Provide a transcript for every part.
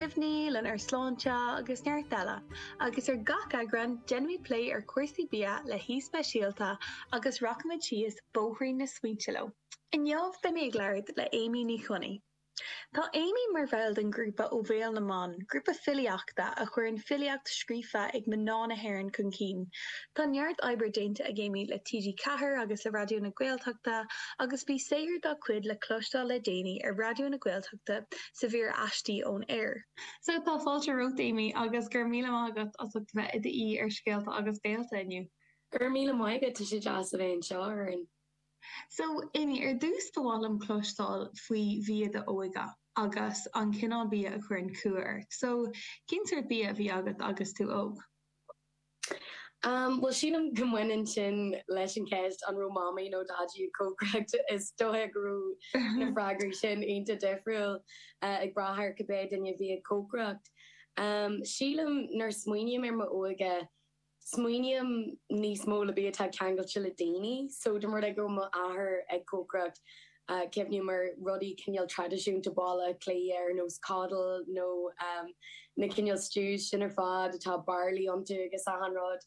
cuimhní, lenár sláinte agus neart eile, agus ar gach eagrán déanaimid plé ar chúrsaí bia le haoi speisialta agus rachaimid síos bóithrín na smaointe leo. Inniu beidh mé ag labhairt le Amy Ní Choinnigh. Tá Amy mar bhall den ghrúpa Ó Bhéal na mBan, grúpa filíochta a chuireann filíocht scríofa ag mná na hÉireann chun cinn. Tá neart oibre déanta ag Amy le TG Ceathair agus le Raidió na Gaeltachta agus bhí saothar dá cuid le cloisteáil le déanaí ar Raidió na Gaeltachta sa mhír Aistí ón Aer. So tá fáilte romhat Amy agus go raibh míle maith agat as ucht a bheith i d'aoi ar Scéalta agus Gaolta inniu. Go raibh míle maith agat, tá sé deas a bheith anseo a Lauren. So, Amy, ar dtús ba mhaith liom cloisteáil faoi bhia d'óige agus an cineál bia a chuireann cumha ort. So, cén sórt bia a bhí agat agus tú óg? Um, bhuel, sílim go mbaineann sin leis an ceist an raibh mamaí nó daidí ag cócaireacht is dóigh go raibh na freagraí sin ionta difriúil uh, ag brath ar cibé duine a bhí ag cócaireacht. Um, sílim nuair a smaoiním ar m'óige, smaoiním níos mó le bia atá ceangailte le daoine, so dá mba rud é go raibh m'athair ag cócaireacht, cuimhním ar rudaí cineál traidisiúnta Bhaile Átha Cliath ar nós Coddle nó na cineál stews sin ar fad atá barley iontu agus achan rud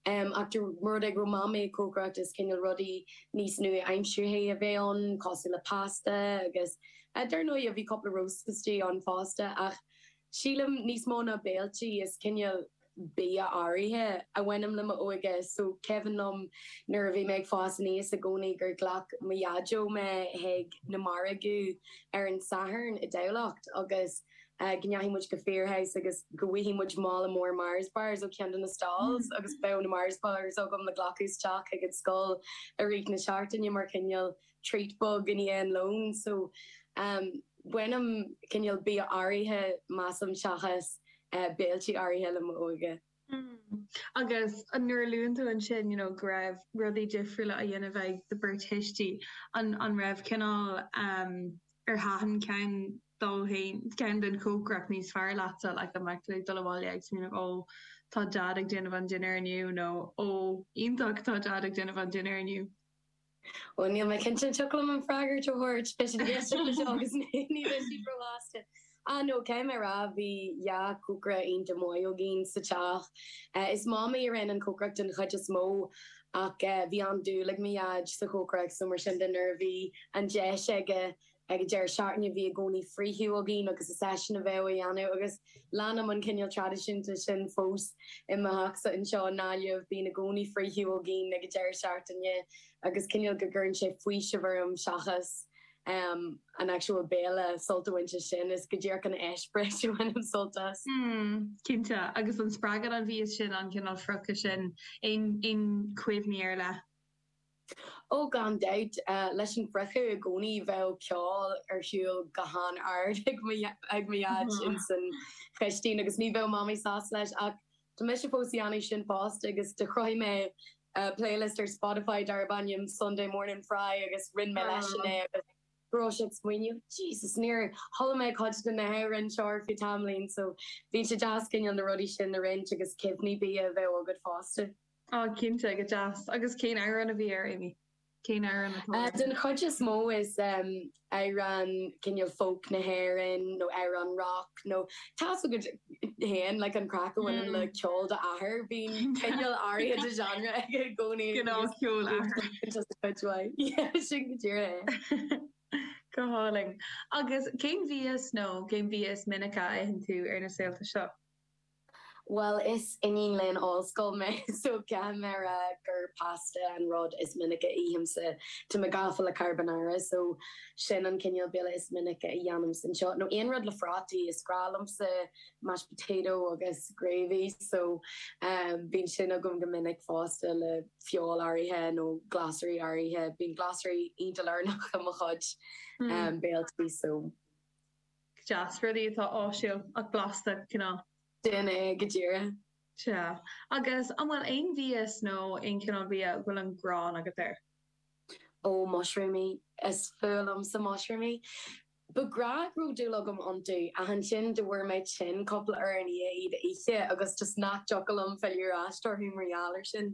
ach dá mba rud é go raibh Mamaí ag cócaireacht is cineál rudaí níos nua-aimseartha a bheadh ann cosúil le pasta agus dar ndóigh bhí cúpla roasts istigh ann fosta ach Sílim, níos mó ná béilí, is cineál bia áirithe a bhaineann le m'óige. So, cuimhin liom nuair a bhí mé ag fás aníos i gcónaí gur ghlac mo Dhaideo mé chuig na margaí ar an Satharn i dTamhlacht agus go rachadh muid go Firhouse agus go bhfaigheadh muid mála mór Mars Bars ó cheann de na stalls agus bheadh na Mars Bars agam le glacadh isteach chuig an scoil i rith na seachtaine mar chineál treat bog i ndiaidh an lóin so bainim cineál bia áirithe measaim seachas béilí áirithe le m'óige. Hmm. Agus nuair a luann tú ansin you know go raibh rudaí difriúla á dhéanamh ag do bheirt thuistí, an raibh cineál em ar thaitin ceann dóibh, ceann den chócaireacht níos fearr leatsa like an mbeadh tú ag dul abhaile ag smaoineamh ó tá Dad ag déanamh an dinnéar inniu nó ó iontach tá Dad ag déanamh an dinnéar inniu? Bhuel níl mé cinnte an dtiocfadh liom an freagra a thabhairt éistfidh siad leis seo agus ní bheidh siad róshásta. Ah no, caithfidh mé a rá, bhí dhá chócaire iontach maith againn sa teach. Is Mamaí a rinne an chócaireacht den chuid is mó ach bhí an-dúil ag mo Dhaid sa chócaireacht so mar sin de nuair a bhí an deis aige ag an deireadh seachtaine bhí i gcónaí friochadh againn agus is eisean a bheadh á dhéanamh agus leanaim an cineál traidisiúin sin fós i mo theachsa anseo i nGaillimh, bíonn i gcónaí friochadh againn ag an deireadh seachtaine agus cineál go gcuireann sé faoiseamh orm seachas an actual béile sult a bhaint as sin, is go díreach an eispéireas a bhainim sult as. Mm, cinnte agus an spreagann an bia sin an cineál friochadh sin, aon chuimhní ar leith? Ó, gan dabht, leis an bhfriochadh i gcónaí bheadh ceol ar shiúl go han-ard ag mo, ag mo Dhaid ins an chistín agus ní bheadh Mamaí sásta leis ach tá mise fós ag déanamh sin fosta agus do chruthaigh mé playlist ar Spotify darb ainm Sunday Morning Fry agus roinn mé leisean é agus go raibh sé ag smaoineamh Jesus níor chuala mé cuid de na hamhráin seo ar feadh tamaillín so bhí sé deas cineál na rudaí sin a roinnt agus cuimhní bia a bheith agat fosta. Ah, cinnte, go deas. Agus cén amhráin a bhí air? Cén amhráin atá air? Den chuid is mó is amhráin cineál folk na hÉireann nó amhráin rock nó tá a fhios agat féin, like an craic a bhaineann le ceol d'athair, bíonn cineál áirithe de genre aige i gcónaí. Gnáthcheol athar. Just a cuid mhaith. Yeah, sin go díreach é. Go hálainn. Agus cén mhias nó cén mhias is minice a itheann tú ar na saolta seo? Bhuel, is iníon léinn ollscoile mé, so caithfidh mé a rá gur pasta an rud is minice a ithimse. Tá mé gafa le carbonara, so sin an cineál béile is minice a dhéanaimse anseo. Nó aon rud le frátaí, is breá liomsa mashed potato agus gravy, so bíonn sin agam go minic fosta le feoil áirithe nó glasraí áirithe. Bíonn glasraí iontach lárnach i mo chuid béiltí, so. deas, rudaí atá áisiúil ach blasta, cineál. Sin é go díreach. Sea. Agus an bhfuil aon bhia nó aon chineál bia a bhfuil an ghráin agat air? Oh, mushroomaí. Is fuath liomsa mushroomaí. Ba ghnách go raibh dúil agam iontu ach ansin do bhfuair mé tinn cúpla uair ina dhiaidh iad a ithe agus just nach dtiocfadh liom filleadh ar ais orthu mar gheall air sin.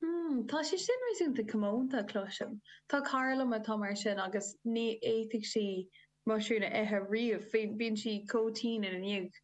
Hmm, tá sé sin réasúnta comónta, cloisim. Tá cara liom atá mar sin agus ní fhéadfadh sí muisiriúin a ithe riamh, bíonn sí chomh tinn ina ndiaidh.